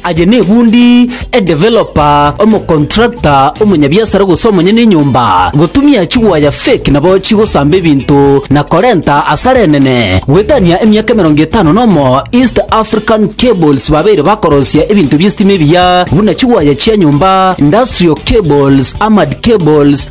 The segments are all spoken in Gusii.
Aye nebundi, edevelopa, omokontrakta, omonyabiasara gose omonyene enyomba, gotumia chigwaya fake nabo chigosamba ebinto na korenta asara enene. Goetania emiaka emerongo etano nomo East African Cables babeire bakorosia ebinto bi'esitima ebiya buna chigwaya chia nyomba, industrial cables, armored cables,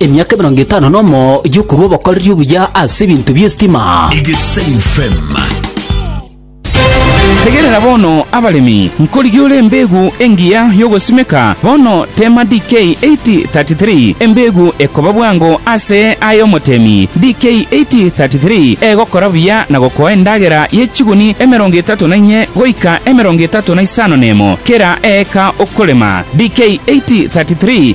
Emiaka emerongo etano nomo y'okorua obokoreri obuya ase ebinto bi'esitima. Tegerera bono, abaremi, nkorigie ore embeegu engiya y'ogosimeka bono, teema DK 8:33, embeegu ekoba bwango ase aye omotemi, DK 8:33, egokora buya na gokoa endagera ye chiguni emerongo etato na inye goika emerongo etato na isano nemo kera eeka okorema, DK 8:33.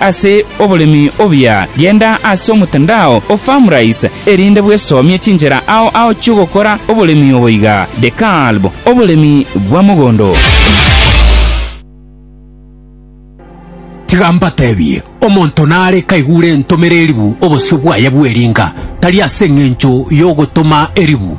Ase oboremi obuya, genda ase omotandao o Farmrise erinde bwesomie chinchera ao ao chi'ogokora oboremi obo iga, De Kalb, Oboremi bwa mogondo. Tiga mbatebie, omonto nare kaigure entomera eribu obosio bwaye bw'eringa, tari ase engencho y'ogotoma eribu,